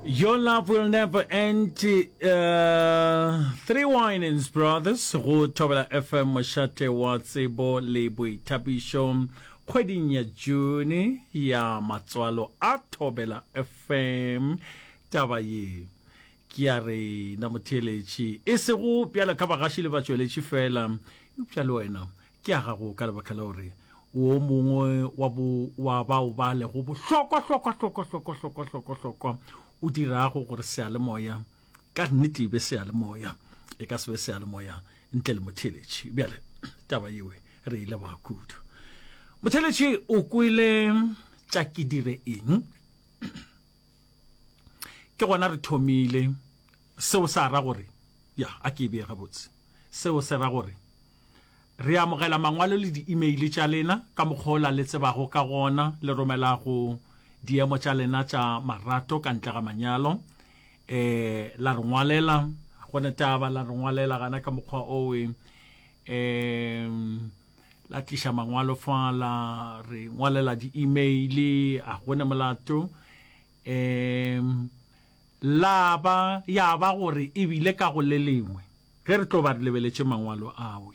Your love will never end uh, Three Winans Brothers go Thobela FM mošate wa tsebo le boithabišo kgweding ya June ya matswalo a Thobela FM taba ye ke ya re na motheeletši e sego bjalo ka bagaši le batšweletši fela eupša le wena ke a gago ka lebaka la gore o o mongwe wa bo wa bao ba lego bohlokwa hlokwa hlokwa hlokwa hlokwa hlokwa hlokwa o dirago gore se ale moya ka nnete e be se ale moya e ka se be se ale moya ntle le motheletši bjale taba yewe re ile ba kudu motheletši o kwele tša ke dire eng ke gona re thomile seo sa ra gore ya a ke e beye gabotse seo se ra gore Re amogela mangwalo le di-email tša lena ka mokgwa o la le tsebago ka gona. Le romela go diemo tša lena tša marato ka ntle ga manyalo. E, la re ngwalela, go ne taba la re ngwalela gana ka mokgwa owe. E, la tliša mangwalo fa la re ngwalela di-email, a go ne molato. E, la ba, ya ba gore ebile ka go le lengwe. Ge re tlo ba re lebeletše Mangwalo ao,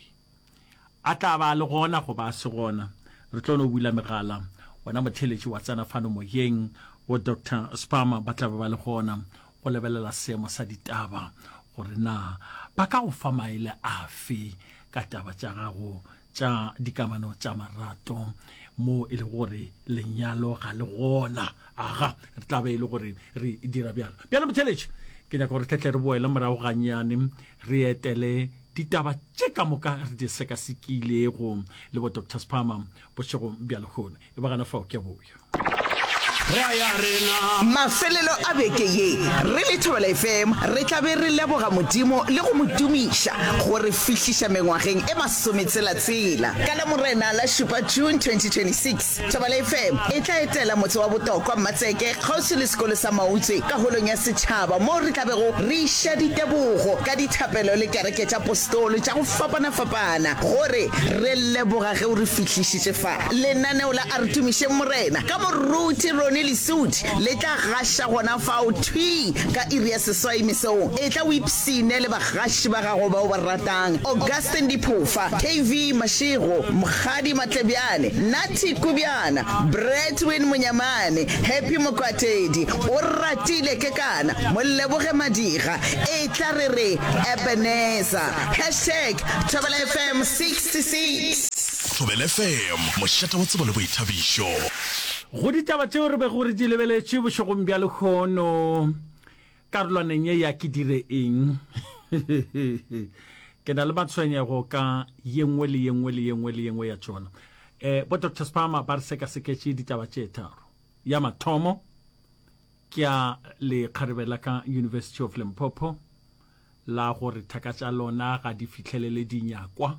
a tla ba a le gona goba a se gona, re tlo no bula megala. Wena motheeletši wa tsena fano moyeng, bo Doctor Sparmer ba tla be ba le gona go lebelela seemo sa ditaba gore na ba ka go fa maele afe ka taba tša gago tša dikamano tša marato mo e le gore lenyalo ga le gona aga re tla be e le gore re dira bjalo bjale motheletše ke nyaka gore tletle re boele morago ganyane re etele ditaba tše ka moka re di sekasekilego le bo doctor spama bošegong bja lehono E ba gana fao, ke a boya. Mafelelo a beke ye, re le Thobela FM re tla be re leboga Modimo le go mo tumiša go re fihliša mengwageng e masometshela-tshela. Ka Lamorena la šupa, June 2026, Thobela FM e tla etela motse wa Botokwa, Mmatseke, kgauswi le sekolo sa Mautswe ka Holong ya Setšhaba moo re tla bego re iša ditebogo ka dithapelo le kereke tša Postolo tša go fapana-fapana go re re leboga ge o re fihlišitše fa. lenaneo la A Re Tumišeng Morena ka moruti Ronnie Lesudi le tla gaša gona fao thwi ka iri ya seswai mesong. Etla o ipshine le bagaši ba gago ba o ba ratang, Augustine Diphofa, KV Mashego, Mokgadi Matlebjane, Natty Kubjana, Bradwin Monyamane, Happy Mokwatedi, Oratile Kekana, Moleboge Madiga, Etla re re Ebenezer. Hashtag Thobela FM 66. Thobela FM, mošate wa tsebo le boithabišo. Go ditaba tšeo re bego re di lebeletše bošegong bja lehono karolwaneng ye ya Ke Dire Eng? ke na le matshwenyego ka ye nngwe le ye nngwe le ye nngwe le ye nngwe ya tšona. Um bo Doctor Spama ba re sekaseketše ditaba tše tharo. Ya mathomo ke ya lekgarebe la ka University of Limpopo la gore thaka tša lona ga di fihlelele dinyakwa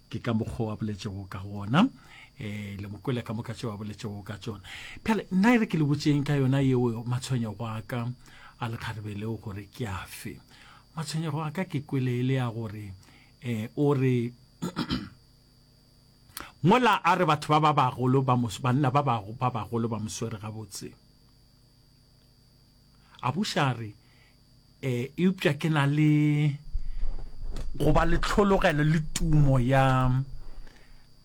ke ka mokgwa wa boletšego ka gona eh le mokwele ka moka tšeo a boletšego ka tšona phele nna e re ke le botseng ka yona yeo matshwenyego a ka a lekgarebe leo gore ke a fe matshwenyego a ka ke kwele e le ya gore eh o re mola a re batho ba ba bagolo ba banna ba bagolo ba moswere gabotse a buša a re e eupša ke na le go ba le tlhologelo le tumo ya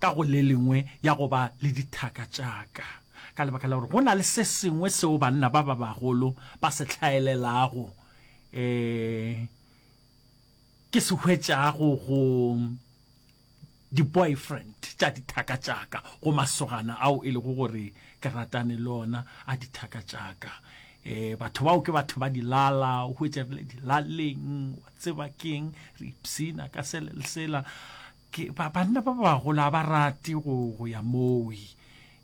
ka go le lengwe ya go ba le dithaka tšaka ka lebaka la gore go na le se sengwe seo banna ba ba bagolo ba se tlhaelelago um ke se hwetšago go di-boyfriend tša dithaka tšaka go masogana ao e lego gore ke ratane le ona a dithaka tšaka um batho bao ke batho ba dilala o hwetša re le dilaleng wa tseba keng re ipsina ka sele le sela banna ba bagola ba rate go ya mowi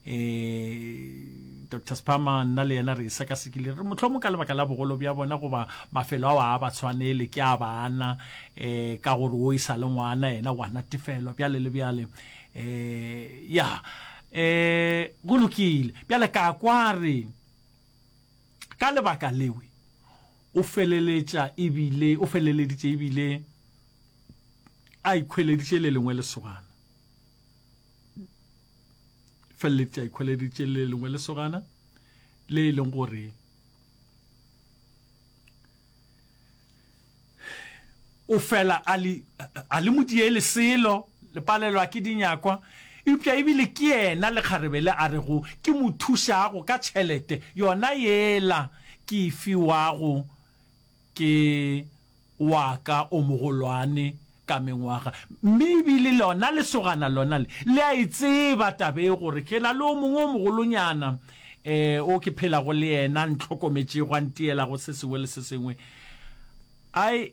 Ee, Doctor Spama, nna le yena re e sekasekile, re mohlomong ka lebaka la bogolo bja bona goba mafelo ao a ba tshwanele ke a bana, um ka gore o e sa le ngwana yena wa natefelwa bjale le bjale. Um ya um go lokile bjale ka kwa re ka lebaka lewe o feleletša ebile o feleleditše ebile a ikhweleditše le lengwe lesogana. feleletše a ikgweleditše le lengwe lesogana le e leng gore o fela a le modiele selo le palelwa ke dinyakwa eupša ebile ke yena lekgarebe le a rego ke mo thušago ka tšhelete yona yela ke e fiwago ke wa ka o mogolwane ka mengwaga, mme e bile lona lesogana lona le, le a e tseba taba e, gore ke na le o mongwe o mogolonyana um o ke phelago le yena, a ntlhokometšego, a nteelago se sengwe le se sengwe. Ai,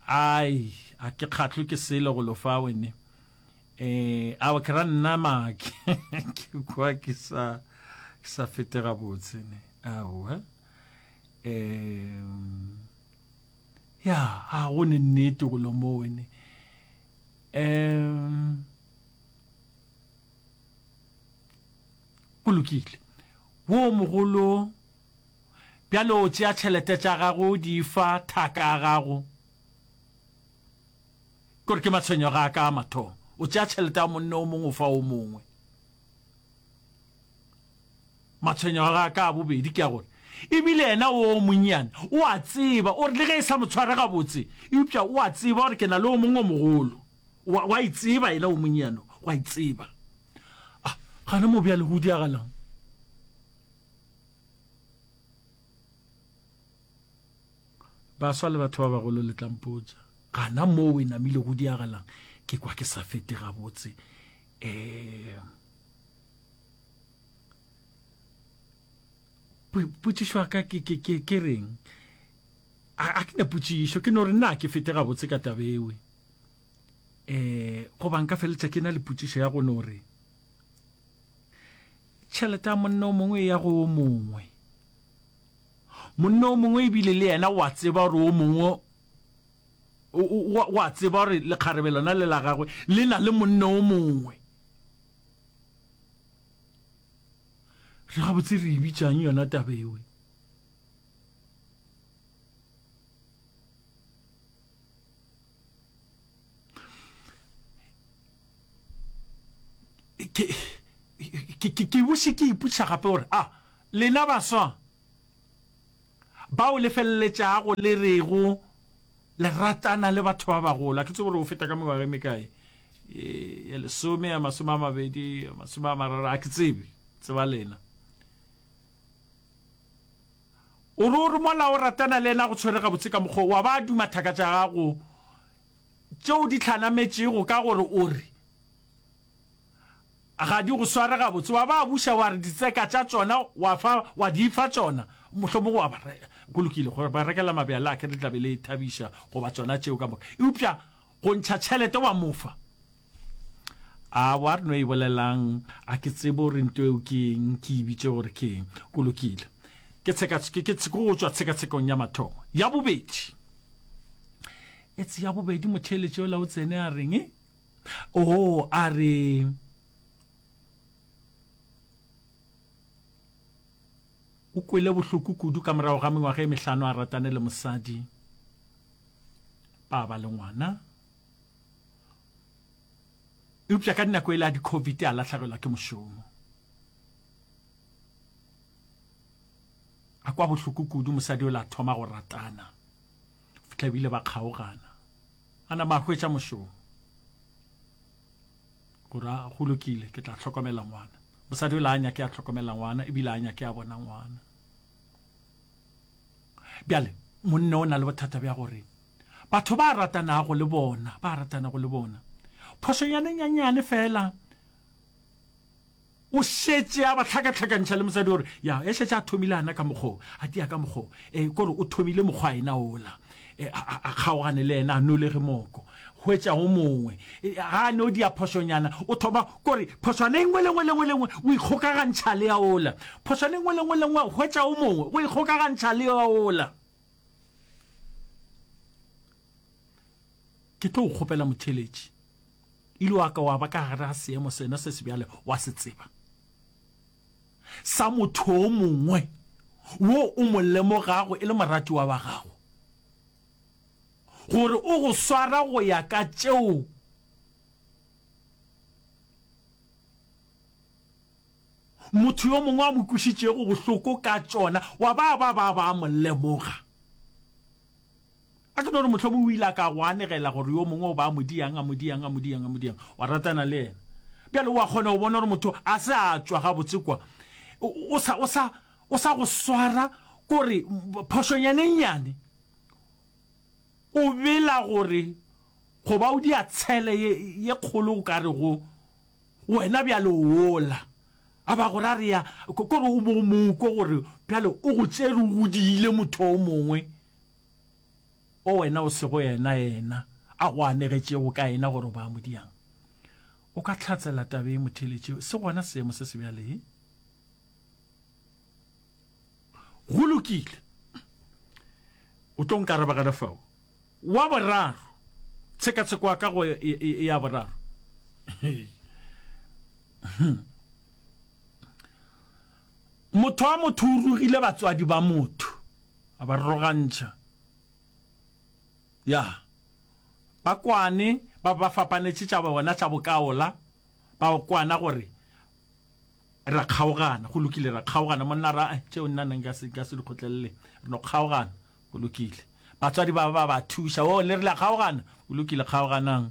ai, a ke kgahlwe ke selo go lo fa wene. Um ao ke ra nna make ke kwa ke sa, ke sa fete gabotse ne. Aowa. um ya ga go ne nnete go lomone um go lokile wo mogolo bjale o tšea tšhelete tša gago di fa thaka ya gago kore ke matshwenyo ga ka mathomo o tšea tšhelete ya monne o mongwe o fa o mongwe Matshwenyo a gagwe a ka a bobedi ke a gore e bile yena wo monnyane o a tseba, o re le ge e sa mo tshware gabotse, eupša o a tseba gore ke na le o mongwe o mogolo. O a, o a itseba yena wo monnyane, o a itseba. A, gana mo bjale go diagalang? Baswa le batho ba bagolo le tlampotsa gana moo e namile go diagalang ke kwa ke sa fete gabotse um potšišo ya ka ke reng a ke na potšišo ke no re na ke fete gabotse ka tabewe um eh, goba nka feletša ke na le potšišo ya go no re tšhelete ya monna o mongwe ya go o mongwe monna o mongwe ebile le yena wa tseba gore o mongwe wa tseba gore lekgarebe lona le la gagwe le na le monna o mongwe re gabotse re e bitšang yona taba ewe ke bose ke iputša gape gore a ah, lena baswa ba o lefeleletšago le rego le ratana le batho ba bagolo. A ke tsebe gore o feta ka mengwaga e mekae, ya lesome, ya masome a mabedi, ya masome a mararo, a ke tsebe, tseba lena. O re o re mola o ratana le ena go tshwere gabotse ka mokgwa wa ba duma thaka tša gago tšeo di tlhanametšego ka gore o re Ga di go sware gabotse. Wa ba buša, wa re ditseka tša tšona wa fa, wa di fa tšona. Mohlomongwe wa ba re, Go lokile, gore ba rekela mabjala a kere le tla be le thabiša, goba tšona tšeo ka moka. Eupša go ntšha tšhelete wa mo fa. A wa re no e bolelang, a ke tsebe gore nto eo ke eng, ke e bitše gore ke eng. Go lokile. Ke tsheka, ke, ke, ke go tšwa tshekatshekong ya mathomo. Ya bobedi. Etse ya bobedi, motheeletši yola o tsene a reng? Oo, a re, o kwele bohloko kudu ka morago ga mengwaga e mehlano a ratane le mosadi ba ba le ngwana eupša ka dinako e le a di-covid a latlhegelwa ke mošomo a kwa bohloko kudu mosadi o la thoma go ratana fitlha ebile ba kgaogana A nama a hwetša mošomo. Go ra, go lokile, ke tla hlokomela ngwana. Mosadi o le a nyake a hlokomela ngwana, ebile a nyake a bona ngwana. Bjale, monne o na le bothata bja gore batho ba ratanago le bona ba ratanago le bona phošonyane nyanyane fela O šetše a ba hlakahlakantšha le mosadi gore, ya, e šetše a thomile ana ka mokgwa o, a tia ka mokgwa o, e, ke gore o thomile mokgwa ena wola, e, a, a, a kgaogane le yena, a nolege moko, hwetša o mongwe, e, ga a no dia phošonyana, o thoma, ke gore phošwana e nngwe le nngwe le nngwe le nngwe, o ikgokagantšha le ya wola, phošwana e nngwe le nngwe le nngwe, hwetša o mongwe, o ikgokagantšha le ya wola. Ke tlo go kgopela motheletši. Ile wa ka wa ba ka gare ga seemo sena se se bjale, wa se tseba, sa motho o mongwe wo o mo lemogago e le moratiwa wa gago, gore o go swara go ya ka tšeo motho yo mongwe a mo kwišitšego bohloko ka tšona, wa ba ba ba ba mo lemoga. A ke no re mohlomong o ile a ka go anegela gore yo mongwe o ba a mo diang, a mo diang, a mo diang, a mo diang, wa ratana le yena. Bjale o a kgona go bona gore motho a se a tšwa gabotse kwa, o sa, o sa, o sa go swara kore phošonyana e nnyane o bela gore go ba o dia tshele ye, ye kgolo o ka re go wena bjale o wola. A ba gore a re ya, kore o bo o mo kwa gore bjale o go tšere o go diile motho o mongwe. o wena o sego yena, yena a go anegetšego ka yena gore o ba modiang. O ka tlhatsela taba ye motheletše, se gona seemo se se bjale. Ee. Go lokile. O tlo nkaraba ka lefao. Wa boraro, tshekatsheko ya kago ya boraro. Motho wa motho o rogile batswadi ba motho. A ba rogantšha. Ya. Ba kwane, ba ba fapanetše tša bona tša bokaola, ba kwana gore, Ra kgaogana. Go lokile, ra kgaogana. Monna a re, A-a, tšeo nna nna nka se, nka se di kgotlelele. Re no kgaogana. Go lokile. Batswadi ba ba ba thuša. Oo, le rile a kgaogana? Go lokile, kgaoganang.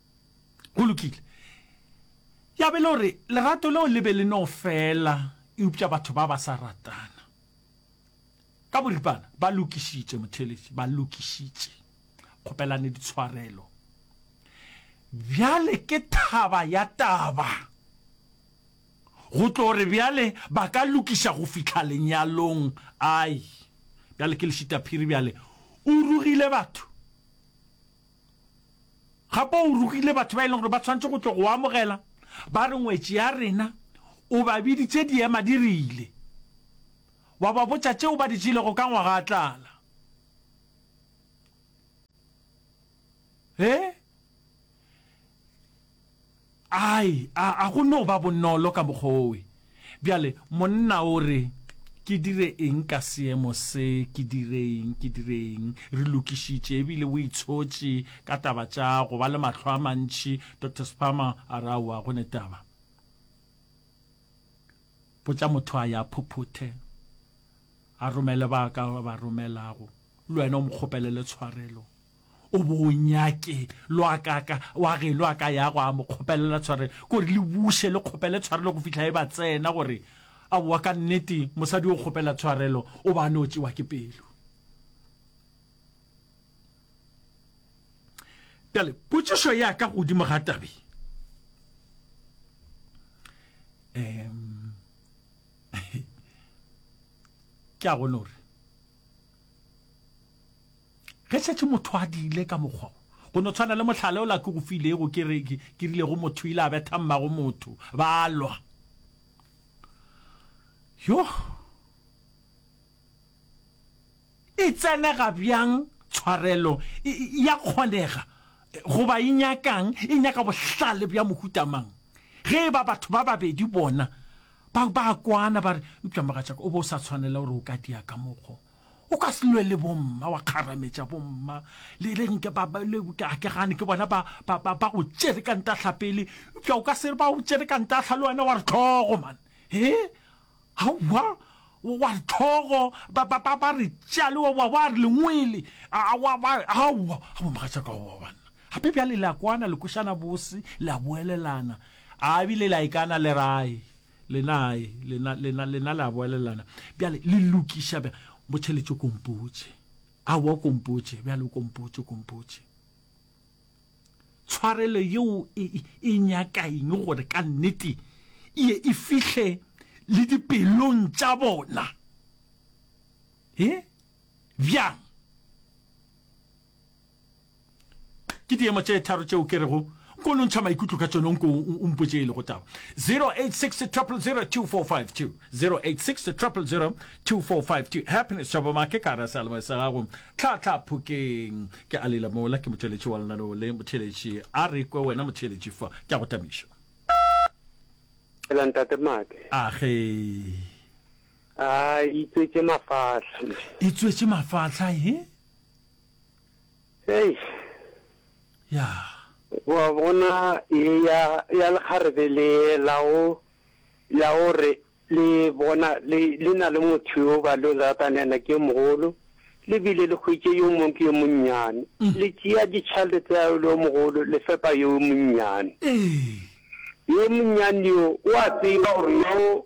Go lokile. Ya be e le gore lerato leo le be le no fela eupša batho ba ba sa ratana. Ka boripana ba lokišitše, motheeletši, ba lokišitše. Kgopelane ditshwarelo. Bjale ke thaba ya taba go tlo re bjale ba ka lokiša go fihla lenyalong. Ai, bjale ke lešitaphiri bjale. O rugile batho. Gape o rogile batho ba e leng gore ba tshwanetse go tlo go amogela, ba re ngwetši ya rena o ba biditše di ema di rile, wa ba botša tšeo ba di tšelego ka ngwaga a tlala. He? Ai, a, a go no ba bonolo ka mokgwa owe? Bjale, monna o re, Ke dire eng ka seemo se? Ke dire eng? Ke dire eng? Re lokišitše, ebile o itshotše ka taba tša go ba le mahlo a mantši. Doctor Sparmer a re, Aowa, go ne taba. Botša motho a ya phuphuthe, a romele ba ka ba romelago, le wena o mo kgopelele tshwarelo. O bo o nyake lo a ka ka wa ge lo a ka ya go a mo kgopelela tshware gore le buše le kgopele tshwarelo go fihla e ba tsena gore a boa ka nnete mosadi o kgopela tshwarelo o ba no tšewa ke pelo bjale potšišo ya ka godimo ga tabe um ke a gone gore Ge šetše motho a diile ka mokgwa wo, go no tshwana le mohlala ola ke go filego, ke re, ke rile go motho, o ile a betha mmago motho, ba lwa. Yoh! E tsenega bjang tshwarelo? E, e a kgonega, goba e nyaka'ng? E nyaka bohlale bja mohuta mang? Ge e ba batho ba babedi bona ba, ba a kwana, ba re, Eupša mogatšaka, o be o sa tshwanela gore o ka dia ka mokgwa wo. O ka se lwe le bomma wa kgarametša bomma le le nke ba ba- le ke a ke gane ke bona ba ba ba ba go tšere ka ntahla pele eupša o ka se re ba o tšere ka ntahla le wena wa re tlhogo man he aowa wa wa re tlhogo ba ba ba ba re tša le wa wa wa re lengwele a a wa ba aowa a bomogatšaka aowa banna gape bjale le a kwana le kwešana bose le a boelelana a ebile le a ikana le rae lena ae lena lena lena le a boelelana bjale le lokiša bja mo tšheletše kompotše a wa kompotše bjale o kompotše kompotše tshwarelo yeo e, e, e nyaka eng gore ka nnete ye e fihle le dipelong tša bona e bjang ke diemo tše tharo tšeo ke rego nko no ntšha maikutlo ka tšone nko o mpotše e lego taba 0860002452 0860002452 happiness tšhabomake ka rasa lemo sa gago tlhatlha phokeng ke a lela mola ke motšweletši wa lenaneo le motheletši a re kwe wena motheletši fa ke a go tamiša ntate make age a itswetše mafahla itswetše mafahla he Hei. Ya. Wa bona e ya ya lekgarebe le la o la o re le bona le le na le motho yo ba lo ratana ena ke mogolo le bile le khwitše yo mong ke yo monnyane mm. le tšea ditšhalete tsa yo mogolo le fepa yo monnyane ee. yo monnyane yo o a tseba gore yo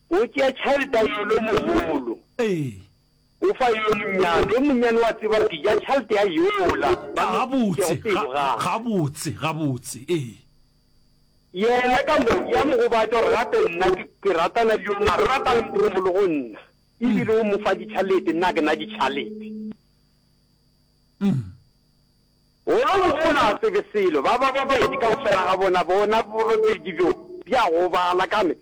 O tšea tšhalta yo lo mogolo. Ee. O fa yo monnyane. Yo monnyane wa tseba gore ke ja tšhalta ya yola ba mo Gabotse. Ga, ga, gabotse, gabotse. Ee. Yena ka mo, ya mo gobatša gore gape nna ke, ke ratana le yo mare. O rata le motho o mogolo go nna. E bile o mo fa ditšhalete, nna ke na ditšhalete. Gona mo o na tsebe selo. Ba ba babedi kaufela ga bona, bona borobedi bjo, bja gobala ka me.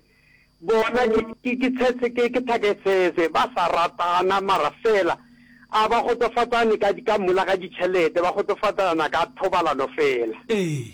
Bona, ke, ke, ke tshetse, ke, ke thaketsetse. Ba sa ratana, mara feela a ba kgotsofatsane ka, ka mola ga ditšhelete, ba kgotsofatsana ka thobalano feela. Ee.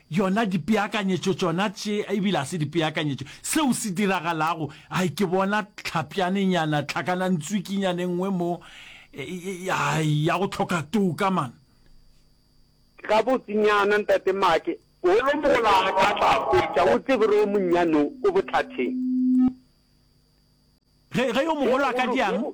Yona dipeakanyetšo tšona tše, e bile ga se dipeakanyetšo, seo se diragalago, ai, ke bona tlhapjanenyana, tlhakanantswikinyana e nngwe mo, ai, ya go hloka toka, man. Gabotsenyana, Ntate Maake, holomola ka tla hwetša o tsebe gore o monnyane o, o botlatheng. Ge, ge yo mogolo a ka diang?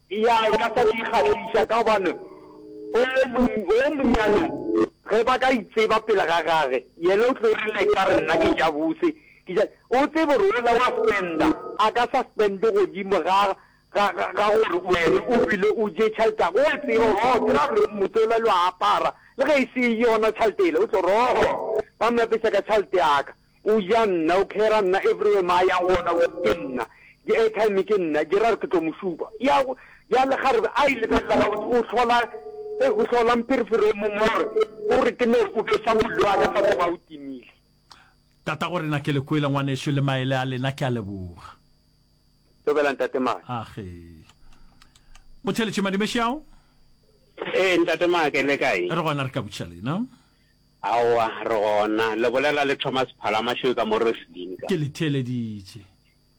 Eya, e ka sa di kgahliša, ka gobane o yo monnyane ge ba ka itseba pele ga gage, yena o tlo rile e ka re nna ke ja bose, ke ja. O tsebe gore wola wa spenda, a ka sa spende godimo ga, ga, ga, ga gore wena o bile o je tšhelete ya gagwe. O a tseba gore, oo, ke ra gore motse wola le wa apara, le ge e se yona tšhelete yela, o tlo re, oo, ba mmeapeša ka tšhelete ya ka. O ja nna, o care-a nna, everywhere mo a yang gona wo ke nna, di airtime ke nna, di ra re ke tlo mo šupa. Ya go, bjale ga re a e lebelela gabotse, o hlola, eh, o hlola mpherefere o mongwe gore o re ke no o besa mollo wa ka fa tloga o timile. Tatagorena ke le kwele ngwanešu le maele a lena, ke a leboga. Thobela Ntate Maake. Age. Motheletši Madimešao? Ee, Ntate Maake, le kae? Re gona re ka botša lena. Aowa, re gona. Le bolela le Thomas Phalamašoe ka mo Rosslyn ka. Ke le theeleditše.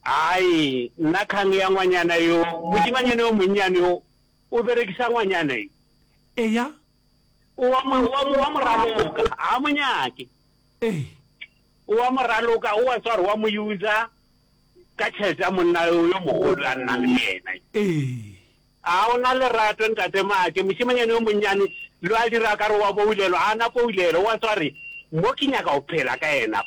Ai, nna kgang ya ngwanyana yo, mošemanyana yo monnyane yo, o berekisa ngwanyana yo. Eya. O wa mo, o wa mo, o wa mo raloka. Ga a mo nyake. Ee. O wa mo raloka, o wa tswa gore o wa mo user ka tšhelete ya monna yo, yo mogolo a nnang le yena. Ee. A o na lerato, Ntate Maake? Mošemanyane yo monnyane yo a dira ka re o a boulelwa. A na poulelo? O a tswa a re, Mo ke nyaka go phela ka Yena.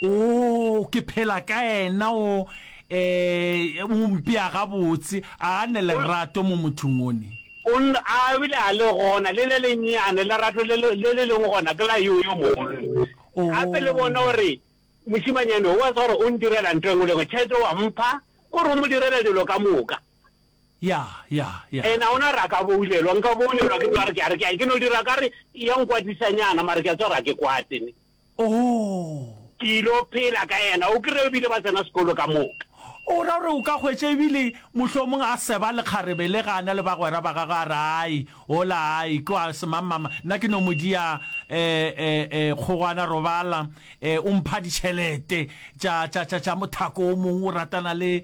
Oo, ke phela ka Yena. O, ee, O mpea gabotse. A a ne lerato mo mothong o ne? O nn, a a bile a le gona, le le lennyane, lerato le le, le le leng gona ke la yo, yo mogolo. Gape le bona, o re, Mošemanyane yo, o a tswa a re, o ndirela ntho e nngwe le e nngwe. Tšhelete o a mpha, o re o mo direla dilo ka moka. Yeah, yeah, yeah. And a ona re a ka boulelwa, nka boulelwa ke tswa re ke a re ke a ke no dira ka re e ya nkwatisanyana mara ke a tswa re a ke kwate ne. Oh. Ke ilo phela ka yena, o kry-e ebile ba tsena sekolo ka moka. O ra gore o ka hwetša ebile mohlomong a seba lekgarebe le ga a na le bagwera ba gagwe a re ai, hola ai, tloa semangmama, nna ke no mo dia eh, eh, eh, kgogwana robala, eh, o mpha ditšhelete tša, tša, tša, tša mothako o mongwe o ratana le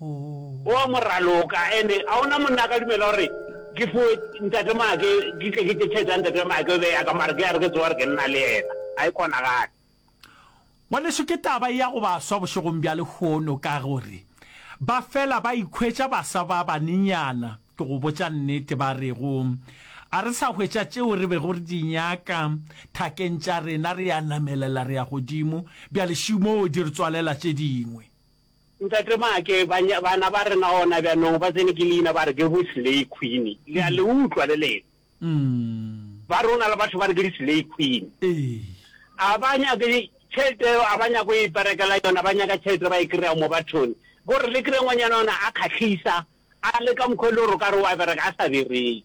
O a mo raloka and a ona monna a ka dumela gore ke fo ntate make ke tle ke tše tšhelete ya ntate make be ya ka mare ke a re ke tsoga re ke nna le yena ga e kgonagale. Ngwaneso ke taba ya go baswa bošegong bja lehono ka gore ba fela ba ikhwetša baswa ba banenyana ke go botša nnete ba rego a re sa hwetša tšeo re bego re di nyaka thakeng tša rena re a namelela re ya godimo bjale šumoo di re tswalela tše dingwe. Ntate Maake, bany, bana ba rena gona bjanong ba tsene ke leina ba re ke bo-slay queen. Le a le utlwa le lena? Umm. Ba re go na le batho ba re ke di-slay queen. Ee. Ga ba nyake tšhelete eo, ga ba nyake go iperekela yona, ba nyaka tšhelete ba e kry-a mo bathong. Ko re le kry-e ngwanyana ona a kgahlisa, a le ka mokgwa e le gore o ka re o a bereka, a sa bereke.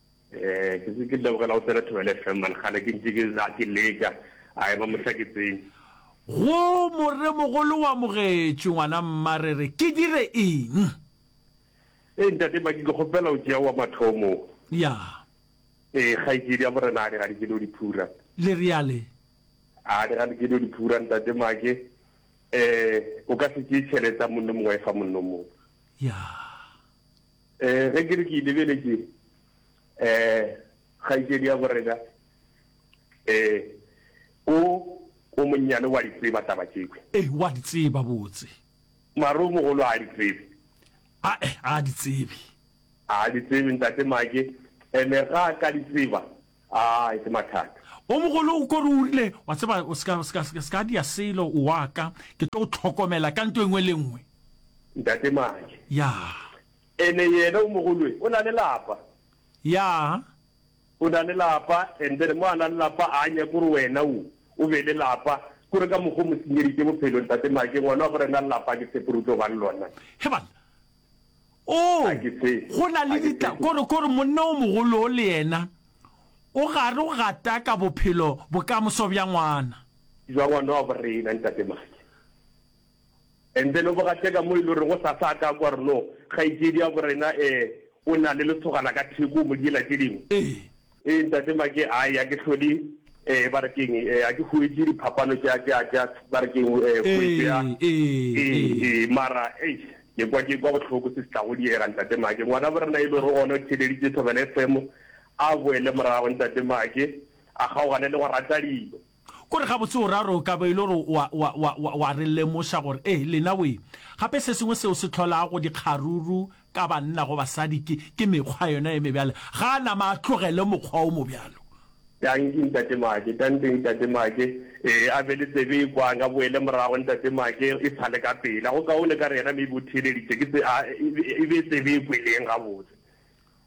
Eh, ke se ke lebogela go tsena thobele fm mane gale ke ntse ke la ke leka a eba mohla ke tsene go moremogolo wa mogetše ngwana mmare re ke dire eng e eh, ntate baki ke kgopela o tšea wa mathomo ya e eh, kgaitsedi ya morena a di ga di kele o diphura le reale a di ga di kele o diphura ntate make um o ka se tšee tšhelete a monno mongwe e fa monno mongwe ya Eh, ge ke re ke lebeletše eh kgaitšedi ya borena eh o o monnyane wa di tseba taba tšekwe. Eh, wa di tseba botse. Maro mogolo a di tsebe. A eh, a di tsebe. A di tsebe ntate Make, ene ga ka di tseba. A e se mathata. O mogolo o ko re o rile, wa tseba, o seka, o seka, seka, seka dia selo, o wa ka. Ke tlo go tlhokomela ka nto engwe le nngwe. Ntate Maje. Ya. Ene yena o mogolwe, o na le lapa. Ya. O na le lapa, and then mo a na le lapa a nyake gore wena o, o be le lapa. Kore ka mokgwa o mo senyeditše bophelo, Ntate Maje. Ngwana wa gore na le lapa ke tshepe gore o tlo ba le lona. He bana. Oo, go na le dita, kore, kore monna o mogolo o le yena o gare o gataka bophelo, bokamoso bja ngwana. Bja ngwana wa borena, Ntate Maki. And then o bo gateka mo e le goreng o sa sa ka kwa re no, kgaetšedi ya borena, eh, o na le lesogana ka theko, o mo diela tše dingwe. Ee. Ee ntate Make, a ya ke hlole eh ba re keng eh ha ke huetše diphapano tša tša tša ba re keng eh huetšo ya eh eh mara eish ke kwa ke kwa bohloko se se tla go diega ntate Make ngwana bo rena e le gore gona o theleditše Thobela FM a boele morago ntate Make a kgaogane le go rata dilo. Ko re gabotse o ra gore o ka ba e le gore o a, o a, o a, o a, o a re lemoša gore, ee, lena we. Gape se sengwe seo se hlolago go dikgaruru ka banna go basadi ke, ke mekgwa yona ye mebjalo. Ga a nama a tlogele mokgwa wo mobjalo. Danki, Ntate Maake. Danki, Ntate Maake. Ee, a be le tsebe e kwang, a boele morago, Ntate Maake, e sa le ka pela. Go kaone ka re yena maybe o theeleditše ke tse, a, e be, e be tsebe e kweleng gabotse.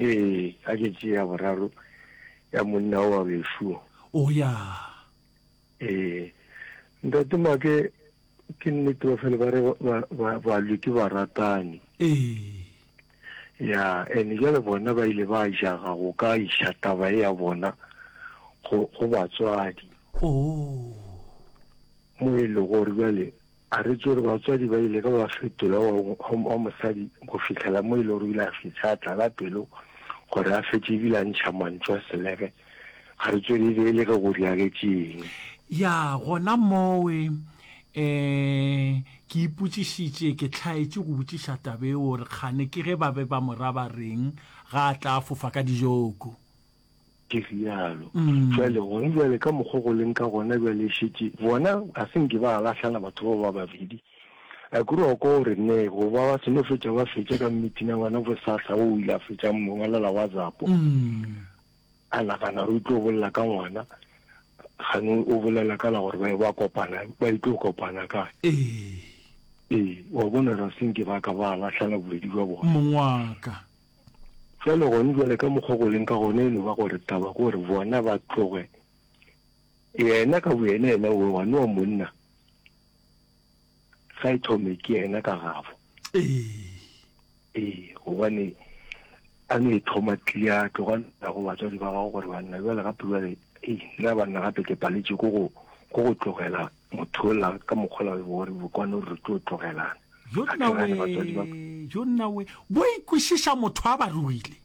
Ee, a ke tše ya boraro ya monna o wa bešuo. O ya. Ee, ntate Make, ke nnete ba fele ba re balwi ke baratani. Ee. Ya, ene jale bona ba ile ba jaga go ka iša taba e ya bona go batswadi. Oo. Mo e le gore jale A re tswere batswadi ba ile ka ba fetola wa, wa, wa mosadi go fihlela mo e le gore o ile a fetša a tlala pelo gore a fetše ebile a ntšha mantšu a selege. A re tswere e be e le ge go diragetše eng. Ya, gona mowe, ee, ke ipotšišitše, ke hlaetše go botšiša taba eo gore kgane ke ge ba be ba mo ra ba reng ga a tla fofa ka dijoko. ke rialo mm. jale gona jale ka mokgwa go leng ka gona jale e šetše bona a se nke ba lahlana batho bao ba babedi a kore wa kwa o re ne go ba ba seno fetša ba fetša ka meeting a bona bosahla o ile a fetšang mongwalela whatsapp mm. a nagana re itlo bolela ka ngwana gane o bolela ka la gore ba ba kopana ba itlo kopana ka ee wa bona ra se nke ba ka ba lahlana bobedi jwa bona mongwaka Bjale gone bjale ka mokgwa go leng ka gona e no ba gore taba ke gore bona ba tloge yena ka boyena yena o wa noa monna ga e thome ke yena ka gabo ee gobane a no e thoma tlia tloga nna go batswadi ba gago gore banna bjale gape bjale ee nna banna gape ke paletše ko go tlogela Motho ola ka mokgola we bore bokwane o re tlo tlogelana. Yo nna we, yo nna we, bo ikwešiša motho a ba ruile.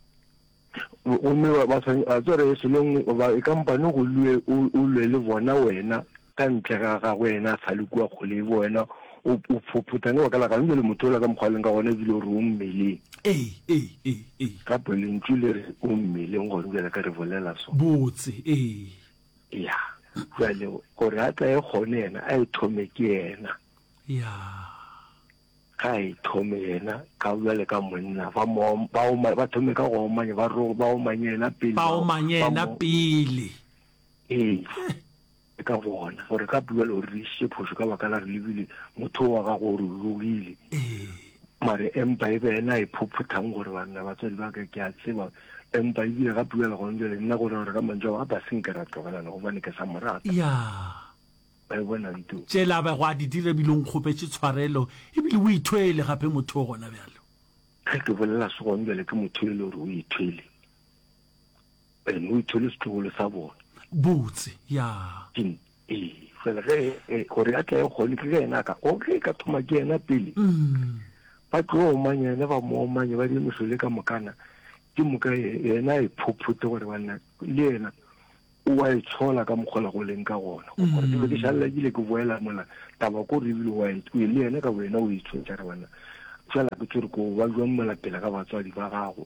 Gomme ba ba tshwanye a tsere e selong ba e kampane go lue o o lwe le bona wena ka ntle ga ga wena sa le kwa kgole bo wena o o phopotsa ne ba ka la ga le motho ola ka mokgwa leng ka gona e bile o re o mmele. Ee, ee, ee, ee. Ka pele ntšu le re o mmele go rubela ka re bolela so. Botse, ee. ya jale gore a tla e kgone yena a e thome ke yena ya ga e thome yena ka jale ka monna ba ba thome ka go omanya ba ro ba omanye yena pele ba omanye yena pele ee ka bona gore ka bua le gore re isitse phoso ka baka la re lebile motho wa gago gore logile mare empa e be ena e phophothang gore banna batswadi ba ka ke a tseba Empa e bile gape bjale gona bjale nna gore gore ka mantšu ao a ba se nke ra tlogelana gobane ke sa mo rata. Ya. Ba e bona nto. Tšela a bego a di dira ebile o nkgopetše tshwarelo ebile o ithwele gape motho o gona bjalo. Ge ke bolela se gona bjale ke motho e le gore o ithwele. Ene o ithwele setlogolo sa bona. Botse. Ya. Ke Ee, fela ge e, gore a tlae gone ke ge yena a ka, o ge e ka thoma ke yena pele, ba tlo omanya yena, ba mo omanya, ba dire mosole ka mokana, ke moka yena a iphophote gore banna le yena o a itshola ka mokgola go leng ka gona mm. gore ke ke šalela ke ile ke boela mola taba ko re ebile wa e, e le yena ka wena o itshwetsa re banna fela ke tsere ko ba jwang mola pele ga batswadi ba gago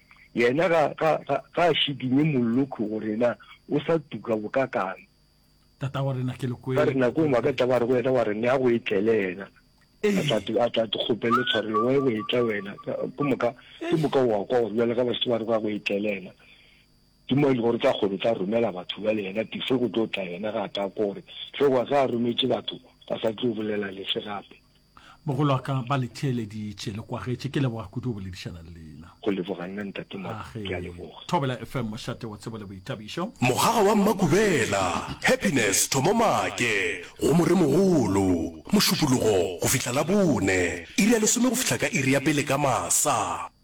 Yena ga, ga, ga, ga a šikinye mollokhu go rena, o sa tuka bokakang. Tata wa rena, ke le kwele. Ka re nako ngwe ka taba re go yena wa re nea go etlele yena. A tla a tla kgopele tshwarelo wa go etla wena. Ke moka ke moka wa kwa gore bjale ga ba se ba re ba go etlele yena. Ke mo ile gore tla kgolo tla romela batho ba le yena tife go tlo tla yena ga ta gore tlo wa ga rometše batho ba sa tlo bolela le se gape. Mogolo wa ka ba le theeleditše, le kwagetše. Ke leboga kudu go boledišana le lena. Go leboga nna Ntate Mo, Age. ke a leboga. Thobela FM, mošate wa tsebo le boithabišo. Mogagwa wa Mmakubela, Happiness Thomomake, go Moremogolo, Mošupologo go fihla Labone, iri ya lesome go fihla ka iri ya pele ka masa.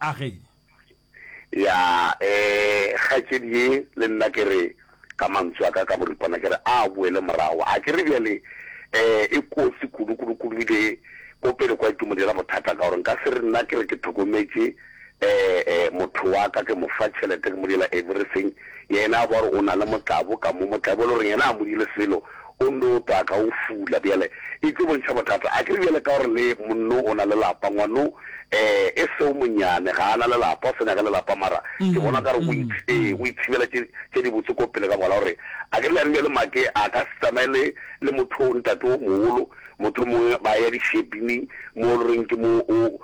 A ge. Ya, ee, kgaetšedi ye, le nna ke re, ka mantsu a ka ka boripana ke re, a boele morago. A ke re bjale, ee, e kotsi kudu, kudu, kudu, e be ko pele kwa e tlo mo dira bothata, ka gore nka se re nna ke re ke thokometše, ee, ee, motho wa ka, ke mo fa tšhelete, ke mo dira everything, yena a bo a re o na le motlabo, ka mo motlabo e le goreng yena a mo dile selo, O nno o taka, o fula. Bjale, e tlo bontšha bothata. A ke re bjale ka gore le monno o na le lapa, ngwano, ee, e seo monyane, ga a na le lapa, o sa nyaka le lapa, mara ke bona o ka re o ith-, ee, o ithibela tše, tše dibotse ko pele ka mola, o re, a ke re bjang bjale Make a ka se tsamaye le, le motho o, ntate o mogolo, mohlomongwe ba ya dishepini moo e le goreng ke moo o,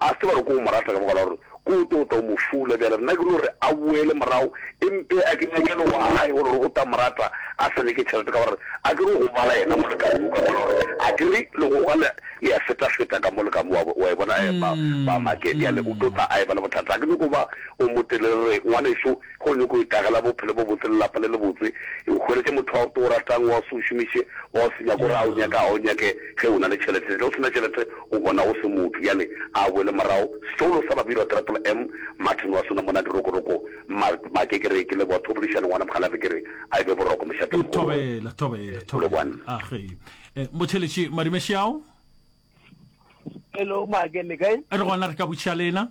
A se tseba gore ke o mo rata ka baka la gore ke o tota, o mo fula. Bjale rena ke no re a boele morago e mpe a kenye bjalo wa gae gore re o tla mo rata a sa nyake tšhelete ka gore a ke re o go bala yena molekane wo ka mola gore a ke re le go ga le le ya feta feta ka mo le ka mo wa wa e bona eh ba ba make bjale o tota a e ba le bothata a ke nyoko ba o mo telele re ngwaneso Ge o nyaka go itagela bophelo bo botse le lapa le lebotse, e hweletše motho wa o ratang, wa o se o šomiše, wa o se nyake gore a o nyake, a o nyake ge o na le tšhelete. Ge o se na tšhelete, o bona o se motho. Bjale a a boele morago. Setšoulo sa Babirwa Triple M, Martin wa sona mona dirokoroko, ma, ma ke ke re ke leboga Thobolišane ngwana Mokgalabje, ke re a e be boroko mošate-mogolo wa. Thobela, thobela, thobela. A ge e, Motheeletši Madimešeao. Hello, Maake, le kae? Re gona, re ka botšiša le ena.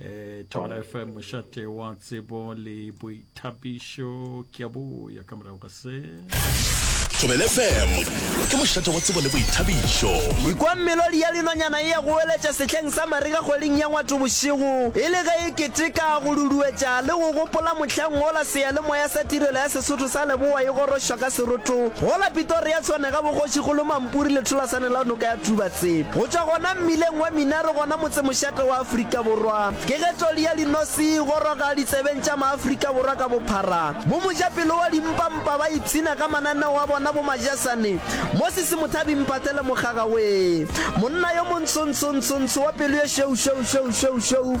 eh thobela fm mošate wa tsebo le boithabišo ke a boya ka morago ga se thobela fm ke mošate wa tsebo le boithabišo ikwa melodi ya linonyana e ya go weletša sehleng sa marega kgweding ya ngwatho bošego e le ge e keteka go luduetša le go gopola mohleng wola seyalemoya sa tirelo ya sesotho sa leboa e gorošwa ka serotho gola pitoria tshwanega bogošigolo mampuri letholasane la noka ya thuba Tsebo. Go tšwa gona mmileng wa Minaro gona motsemošate wa Afrika Borwa, ke ge tloli ya linosi e goroga ditsebeng tša Maafrika Borwa ka bophara. Bomojapelo wa dimpampa ba ipshina ka mananeo a bona bomajasane mo Sesimothabi Mpate le Mokgagawee, monna yo montsho-ntsho-ntsho-ntsho wa pelo ye šweu-šweu-šweu-šweu-šweu,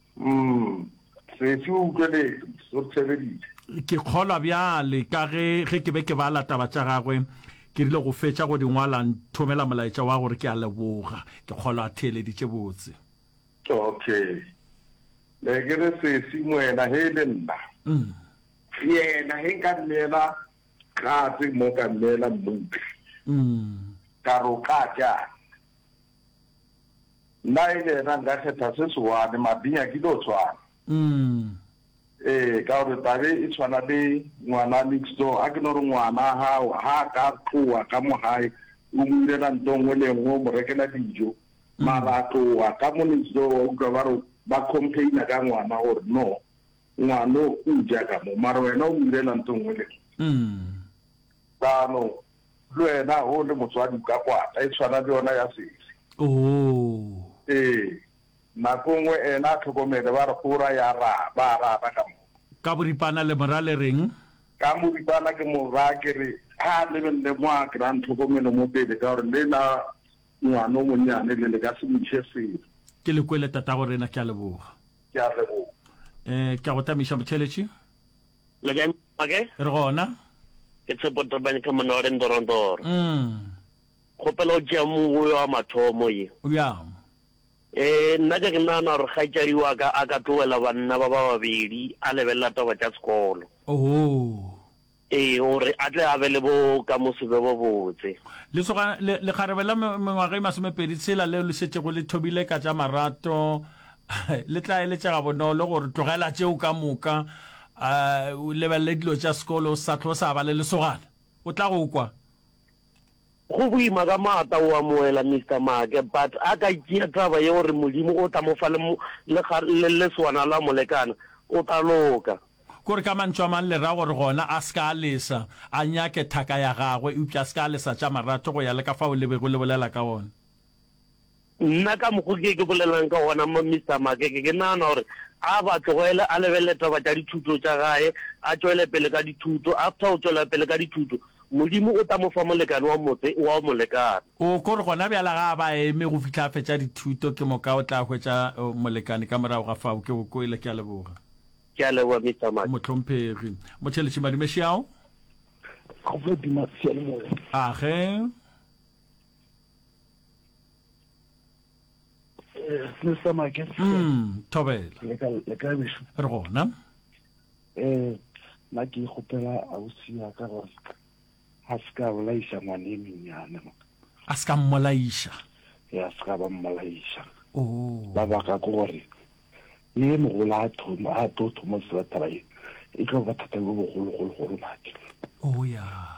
Umm, Sesi o utlweletše, o re tšhebeditše. Ke kgolwa bjale, ka ge, ge ke be ke bala taba tša gagwe, ke rile go fetša go di ngwala, a nthomela molaetša wa gore, Ke a leboga. Ke kgolwa a theeleditše botse. Okay. Ne ke re, Sesi, moena he e le nna. Umm. Yena he nka nneela katse mo ka nneela mmutla. Umm. Ka re, O ka tšang? Nna e le yena nka kgetha se se one, Mabinya ke tlo tshwana. Ee, ka gore tabe e tshwana le ngwana next door, a ke no re ngwana hao ha ka tloa ka mo gae o mo irela nto nngwe le nngwe, o mo rekela dijo, mara a tloa ka mo next door wa utlwa ba re ba complaina ka ngwana gore no ngwano o ja ka mo mara wena o mo irela nto nngwe le nngwe. Jaanong Le wena o le motswadi o ka kwata e tshwana le yona ya sesi. Oh. Ee, nako e nngwe ena a tlhokomele ba re go ra ya ra ba a rata ka mo. Ka boripana le mo ra le reng? Ka moripana ke mo ra ke re a lebelele mo a kry-ang tlhokomelo mo pele ka gore le la ngwana o monnyane le le ka se mo ise selo. Ke le kwele tatagorena, ke a leboga. Ke a leboga. Eh, ke a go tamiša Motheletši. Leken Pake. Ke re gona. Ke Tshepo Tabany ka monna wa re Ndorondoro. Mm. Kgopela o tšea mongwe wa mathomo ye. Bjang? E, nna ke ke nagana gore kgaetšadi wa ka a ka tlogela banna ba ba babedi a lebelela taba tša sekolo. Ohoo. E, gore a tle a be le bo ka mo se be bo botse. Lesoga, le, lekgarebe la me, mengwaga e masomepedi tshela leo le šetšego le thobile ka tša marato, le tla eletša gabonolo gore tlogela tšeo ka moka um o lebelele dilo tša sekolo o sa tlo sa ba le lesogana o tla go kwa Go boima ka maata o amohela Mister Maake but a ka tšea taba ye gore Modimo o tla mo fa le lesogana la molekane o tla loka. Kore ka mantšu a mang le ra gore gona a se ka a lesa, a nyake thaka ya gagwe eupša a se ka a lesa tša maratho go ya le ka fao le bego le bolela ka gona. Nna ka mokgo ke ke bolelang ka gona Mister Makeke ke nagana gore a ba tlogele a lebelele taba tša dithuto tša gae a tšwele pele ka dithuto after go tšwela pele ka dithuto Modimo o tla mo fa molekane wa motse wa go mo lekana. O ko re gona bjala ga a ba eme go fihla a fetša dithuto ke moka o tla hwetša molekane ka morago ga fao ke go kwele ke a leboga. Ke a leboga Mister Make. Mohlomphegi. Motšheletši Madume Šiao. Go Modimo a seyalemoya. Age. Mr. Make. Mm, thobela. Le ka le ka besho. Re gona. Eh, na ke gopela ausi ya ka gore ha se ka bolaisa ngwane menyane. A se ka mmolaisa. Ya se ka ba mmolaisa. Oh. Ba baka ke gore le mogola a thomo a tlo thomo se ba taba e. E tlo ba thata go bogolo golo gore maki. Oh ya. Yeah.